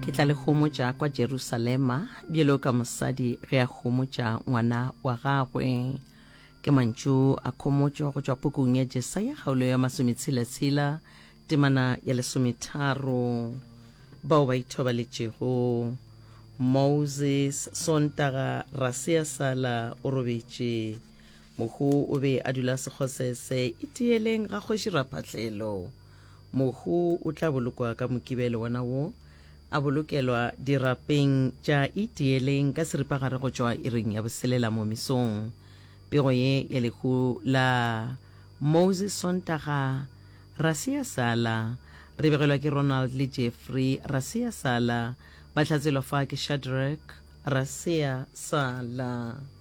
ke tla le homotša kwa jerusalema bjelo ka mosadi ge a homotša ngwana wa gagwe ke mantšu a khomotšo go tšwa pukung ya jesaya kgaolo ya masometshela-tshela temana ya lesometharo bao ba ithobaletšego moses sontaga rasea sala o robetše Mohu o be a dula sekgosese itieleng ga kgoši Raphatlelo. Mohu o tla bolokwa ka mokibelo wona wo, a bolokelwa dirapeng tša itieleng ka seripagare go tšwa iring ya boselela mo mesong. Pego ye ya lehu la Moses Sontaga, ra se ya sala. Re begelwa ke Ronald le Jeffrey, ra se ya sala. Ba hlatswelwa fa ke Shadrack, ra se ya sala.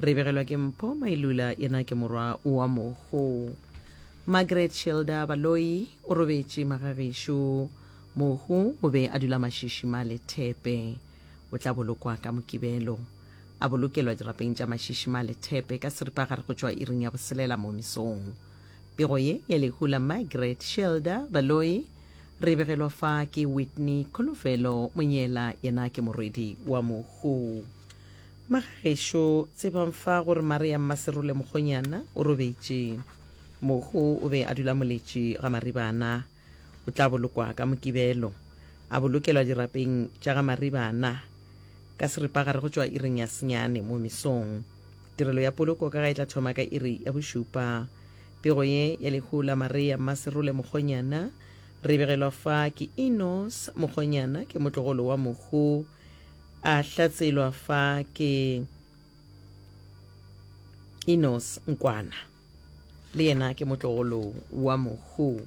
Re begelwa ke Mpho Mailula yena ke morwa wa Mogo. Margaret Shelda Baloyi o robetše magagešo. Mogo o be a dula Mashishi ma Lethepe. O tla bolokwa ka Mokibelo. A bolokelwa dirapeng tša Mashishi ma Lethepe ka seripagare go tšwa iring ya boselela mo mesong. Pego ye ya lehu la Margaret Shelda Baloyi re begelwa fa ke Whitney Kholofelo Monyela yena ke morwedi wa Mogo. Magagešo, tsebang fa gore Maria Mmaserole Mokgonyana o robetše. Mohu o be a dula moletši ga Maribana. O tla bolokwa ka Mokibelo. A bolokelwa dirapeng tša ga Maribana ka seripagare go tšwa iring ya senyane mo mesong. Tirelo ya poloko ka ga e tla thoma ka iri ya bošupa. Pego ye ya lehu la Maria Mmaserole Mokgonyana re e begelwa fa ke Enos Mokgonyana ke motlogolo wa mohu. A hlatselwa fa ke Enos Nkwana, le yena ke motlogolo wa Mohu.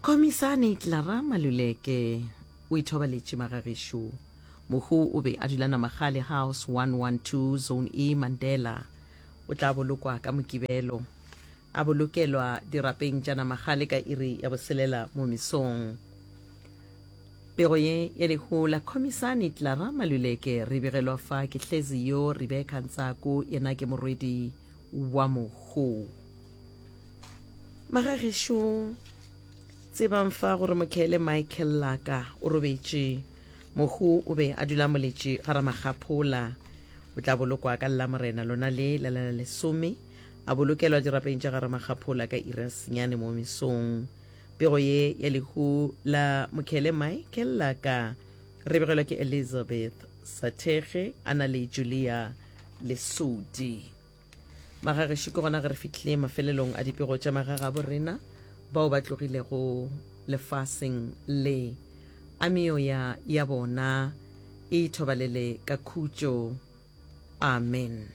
Komisane Clara Maluleke o ithobaletše magagešo. Mohu o be a dula Namagale House 112, Zone E, Mandela. O tla bolokwa ka Mokibelo. A bolokelwa dirapeng tša namagale ka iri ya boselela mo mesong. Pego ye ya lehu la Khomisani Clara Maluleke re begelwa fa ke hlezi yo Rebecca Ntsako yena ke morwedi wa mohu. Magagešo tsebang fa gore Mokhele Michael Laka o robetše. Mohu o be a dula moletše ga Ramagaphola. O tla bolokwa ka Lamorena lona le la lesome A bolokelwa dirapeng tša ga Ramakgaphola ka Irasnyane mo mesong. Pego ye ya lehu la Mokhele Mae Kellaka re begelwa ke Elizabeth Sathege a na le Julia Lesodi. Magagešu ke gona ge re fihlile mafelelong a dipego tša magagabo rena bao ba tlogilego lefaseng le, a meoya ya bona e ithobalele ka khutšo. Amen.